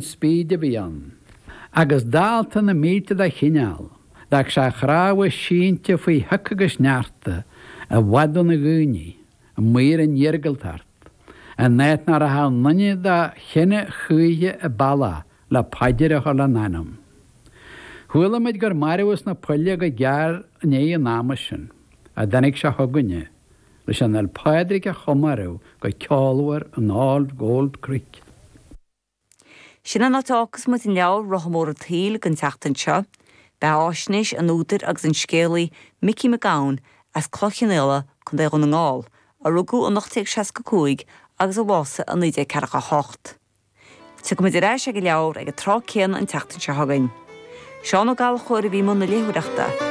spíd a bhí ann agus dálta na mílte dá chineál. d'fhág sé a chnámha sínte faoi shioc agus sneachta, i bhfad óna dhaoine, amuigh ar an iargúltacht, in áit nach rachadh aon duine dá chine choíche an bealach le paidir a chur lena anam. Chuala muid gur marbhadh sna poill é go gearr i ndiaidh an ama sin a dtáinig sé chugainne leis an Fhéil Pádraig a chomóradh go ceolmhar in All Gold Creek. Sin an áit a fhágfas muid an leabhar Rotha Mór an tSaoil don tseachtain seo. Beathaisnéis an údair agus an scéalaí Micí Mac Gabhann as Cloich Chionnaola, Co. Dhún na nGall, a rugadh in 1865 agus a bhásaigh in 1948. Tiocfaidh muid ar ais ag an leabhar ag an tráth céanna an tseachtain seo chugainn. Seán Ó Gallchóir a bhí i mbun na léitheoireachta.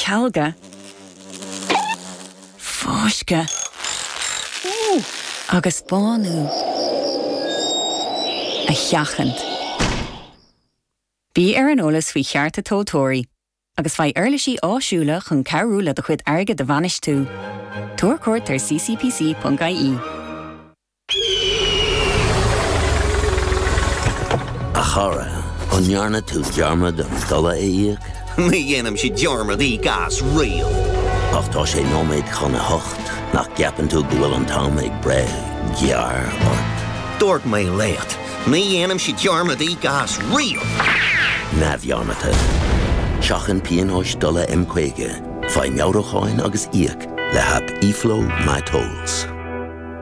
cealgadh, fáisceadh agus bánú a sheachaint. Bí ar an eolas faoi chearta tomhaltóirí agus faigh uirlisí áisiúla chun cabhrú le do chuid airgid a bhainistiú. Tabhair cuairt ar ccpc.ie. A chara, an ndearna tú dearmad an dola a íoc? Ní dhéanaimse dearmad íoc as riamh. Ach tá sé nóiméad chun a hocht, nach gceapann tú go bhfuil an t-am ag breith gearr ort? Dúirt mé leat, ní dhéanaimse dearmad íoc as riamh! Neamhdhearmadta. Seachain pionóis dola M50, faigh meabhrúcháin agus íoc le haip eFlow MyTolls.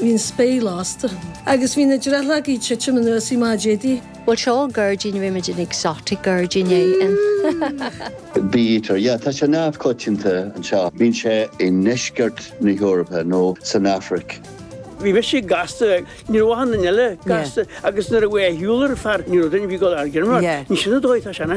Bhí an spéir lasta. Agus bhí na drithlí ag titim anuas i má Jedi. Bhuel, seo gairdín, bhímid in exotic gairdín é. Bítear, yeah, tá sé neamhchoitianta anseo. Bíonn sé i ndeisceart na hEorpa nó san Afraic. Bhí mise gasta ní raibh mhaith duine eile gasta agus nuair a bhfuil a shiúl ar fear ní raibh duine bhí go airgead mar ní sinna dóigh tá sean.